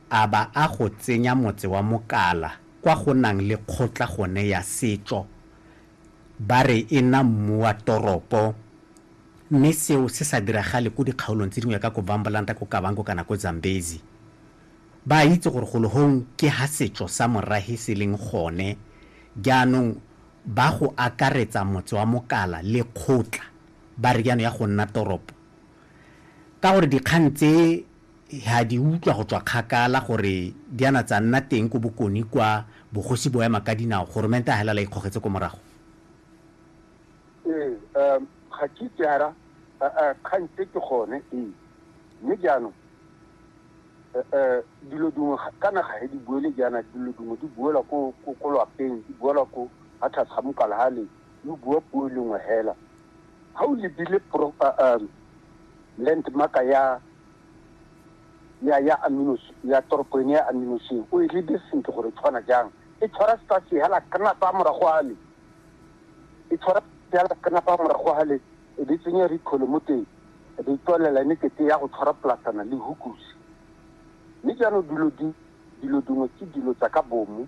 a ba a go tsenya motse wa Mokala kwa go nang le kgotla gone ya setšo, ba re e na mmu wa toropo, mme seo se sa diragale ko dikgaolong tse dingwe ka ko Vambalanta, ko Kavango kana ko Zambezi. Ba a itse gore golo hong ke ha setšo sa Morahe se leng gone, jaanong ba go akaretsa motse wa Mokala le kgotla, ba re jaanong ya go nna toropo, ka gore dikgang tse, ha di utlwa go tswa kgakala gore di ana tsa nna teng ko bokoni kwa bogosi bo ema ka dinao, goromente a helala ikgogetse ko morago. Ee, um, ga ke itse ara kgang tse ke gone, ee. Mme jaanong um dilo dingwe ka naga he di buele jaana dilo dingwe di buela ko ko lwapeng di buela ko ga tlhase ga mokala ga le di bua puo e lengwe hela ga o lebile landmarka ya ya ya aminos ya toropo ene ya aminoseng o e lebe sentle gore tshwana jang e tshwara sa sehala kanapa morago a le e tshwara sehala kanapa morago a le e be tsenya rikhole mo teng e be tswalela ne kete ya go tshwara plasana le hukusi mme jaanong dilo di dilo dingwe ke dilo tsa ka bomo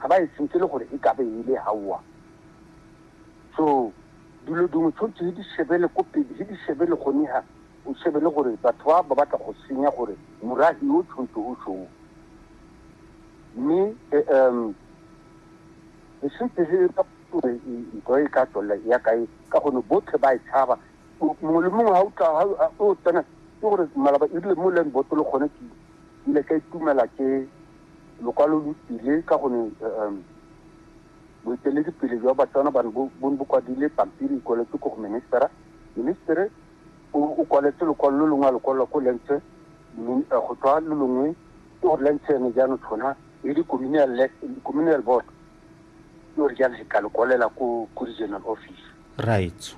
ga ba e sentle le gore e ka be e le haowa so dilo dingwe tshwanetse he di shebele ko pele he di shebele gone ha o shebele gore batho ba ba batla go senya gore morahi o tshwanetse o shoo mme um e sentse he gore ntho e ka tswelela ya kae ka gone botlhe ba e tshaba mongwe le mongwe ga o tsena ke gore malaba ebile mo leng botolo gone ke Ke ne ka itumela ke lokwalo lo tsile ka gone um boeteledipele jwa Batswana bane bo ne bo kwadile pampiri e kwaletswe ko go ministera. Ministere o kwaletse lokwalo lo longwe a lokwalola ko Lentse go tswa lo longwe ke gore Lentse ene jaanong tshona e le communal board ke gore jaanong le ka le kwalela ko regional office. Right.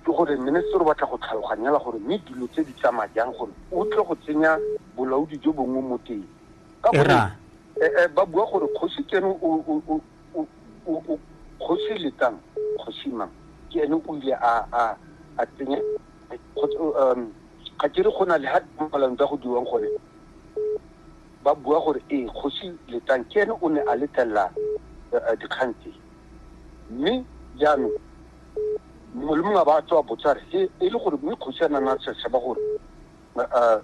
Ke gore minister o batla go tlhaloganyela gore mme dilo tse di tsamaya jang gore o tle go tsenya bolaodi jo bongwe mo teng. Ka gore eh, eh, ba bua gore kgosi kene kgosi letang kgosi mang ke ene o ile a a a tsenya um, ga ke re go na le ha dipalano tsa go dirwang gone ba bua gore ee kgosi letang ke ene o ne a letlelela eh, eh, dikgang tse Mme jaanong mongwe le mongwe a ba a tswa botsa re e e le gore mme kgosi a nana a tshaba gore uh,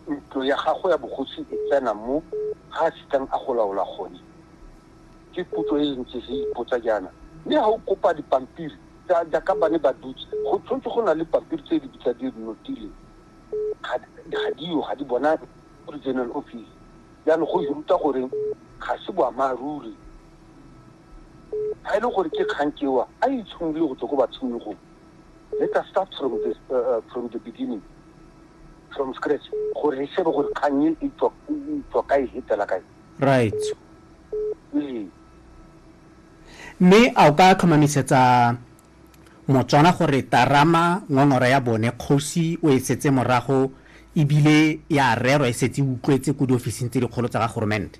ntlo ya gago ya bogosi e tsena mo ga a sitang a go laola gone ke putso e ntse re ipotsa jaana mme ga o kopa dipampiri tsa jaaka ba ne ba dutse go tshwanetse go na le pampiri tse di bitsa di notile ga diyo ga di bona regional office jaanong go ruta goreng ga se boammaaruri Ga e le gore ke kgang ke wa, a itshimolole go tswa ko batshimologong. Let us start from the, uh, uh, from the beginning, from scratch, gore re shebe gore kgang e e tswa e e tswa kae, e tsela kae. Right. Ee. Mme a o ka tlhomamisetsa Motswana gore Tarama ngongora ya bone kgosi o e setse morago ebile ya rerwa e setse e utlwetse ko diofising tse dikgolo tsa ga goromente?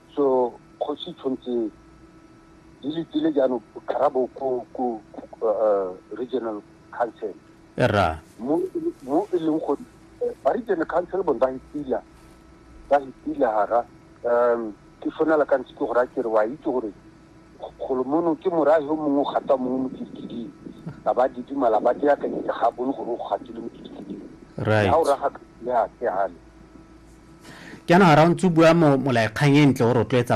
So kgosi tshwanetse di letile jaanong karabo ko ko uh, regional council ra mo mo e leng go ba regional council bone ba hitila ba hitila hara um ke fonela ka ntse ke gore a kere wa itse gore golo mono ke morahi o mongwe o gata mongwe mo kidikiding a ba didimala ba teakanyetsa ga bone gore o gatile mo kidikiding right ha o raga ya ke hale Jaana ga ra o ntse o bua molaekgang e ntle o rotloetsa